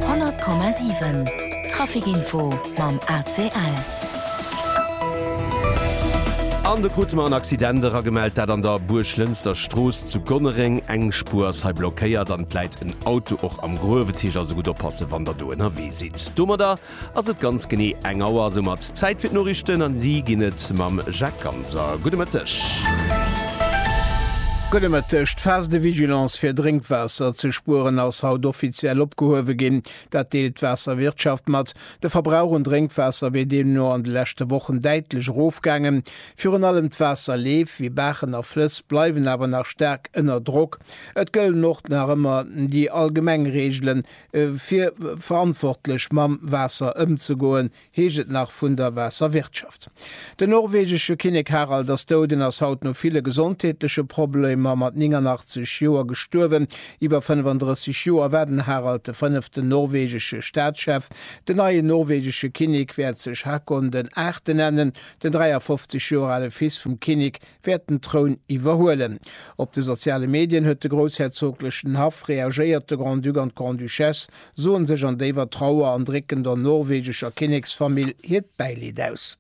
100,7 Trafic Info mam ACL. An de krute mer en Accident eragemellt, dat an der Buerglënster Strooss zu Gonnereng. Eng Spuer ass hei blockéiert an et läit en Auto och am Gruewetich, also gutt oppasse wann der do ënnerwee sidd. Domadder Ass et ganz genee eng Auer soumat Zäit fir d'Noriichten an déi ginn et mam Jacques Ganser. Gudde Mëtteg. Gudde Mëtteg. D'Phase de vigilance fir Drénkwaasser ze spueren ass haut offiziell opgehuewe ginn. Dat deelt d'Waasserwirtschaft mat. De Verbrauch un Drénkwaasser wier deemno an de leschte Wochen däitlech erofgaangen. Virun allem d'Waasserleef, wéi Baachen a Flëss, bleiwen awer nach staark ënner Drock. Et gëllen och nach ëmmer déi allgemeng Reegelen, Fir verantwortlech mam Waasser ëmzegoen, heescht et nach vun der Waasserwirtschaft. Den norwegesche Kinnek Harald ass dout en ass haut no ville gesondheetleche Problemer mat 89 Joer gestuerwen. Iwwer 35 Joer war den Harald de fënneften norwegesche Staatschef. Den neien norwegesche Kinnek wäert sech Haakon den Aachte nennen, den 53 Joer ale Fils vum Kinnek wäert den Troun iwwerhuelen. Op de soziale Medien huet de groussherzoglechen Haff reagéiert, de Grand-Duc an d'Grande-Duchesse soen sech an déiwer Trauer an drécken der norwegescher Kinneksfamill hiert Bäileed aus.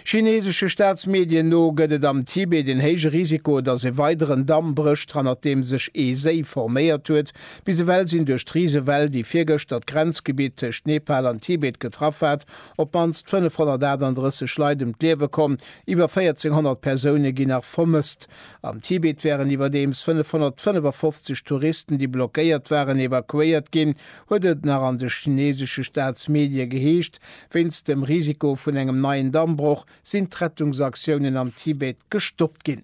Chineesesche Staatsmedien no gëtt et am Tibet en héije Risiko, datt e weideren Damm brécht, hannert deem sech ee Séi forméiert huet. Bis ewell sinn duerch d'Risewell, déi virgëschter d'Grenzgebitt tëscht Nepal an Tibet getraff hat, op d'mannst 538 Leit ëm d'Liewe komm, Iwwer 1400 Persoune ginn nach vermësst. Am Tibet wären iwwerdeems 555 Touristen, déi blockéiert waren, evakuéiert ginn, huet et nach an de chineesesche Staatsmedie geheescht. Wéinst dem Risiko vun engem neien Dammbroch sinn d'Rettungsaktiounen am Tibet gestoppt ginn.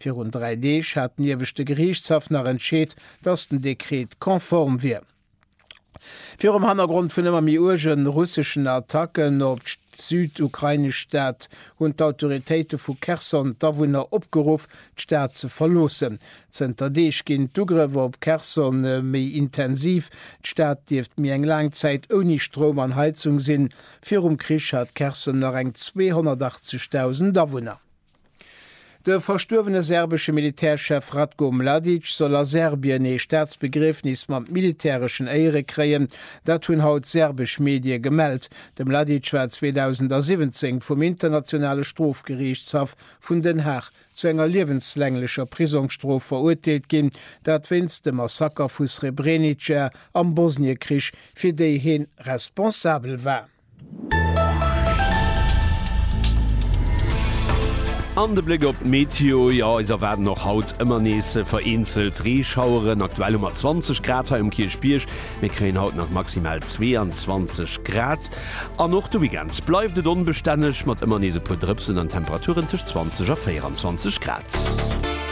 Virun dräi Deeg hat den Ieweschte Geriichtshaff nach entscheet, datt den Dekret konform wier. Virum Hannergrond vun ëmmer méi uerge russeschen Attacken op d'südukrainesch Stad hunn d'Autoritéite vu Cherson d'Awunner opgeruff, d'Stad ze verloossen. Zënter Deeg ginn d'Ugrëff op Cherson méi intensiv. D'Stad dierft méi eng laang Zäit ouni Stroum an Heizung sinn. Virum Krich hat Cherson nach eng 280.000 Awunner. De verstuerwene serbesche Militärchef Ratko Mladic soll a Serbien ee Staatsbegriefnis mat militäreschen Éiere kréien. Dat hunn haut serbesch Medie gemellt. De Mladic war 2017 vum Internationale Strofgeriichtshaff vun Den Haag zu enger liewenslänglecher Prisongsstrof verurteelt ginn, dat wéinst dem Massaker vu Srebrenica am Bosniekrich, fir déi heen responsabel war. An de Bléck op d'Meteo, jo eis erwaarden och haut ëmmer nees vereenzelt Reeschaueren. Aktuell hu mer 20 Grad hei um Kierchbierg, mir kréien haut nach maximal 22 Grad an och de Weekend bleift et onbestänneg mat ëmmer nees e puer Drëpsen an Temperaturen tëscht 20 a 24 Grad.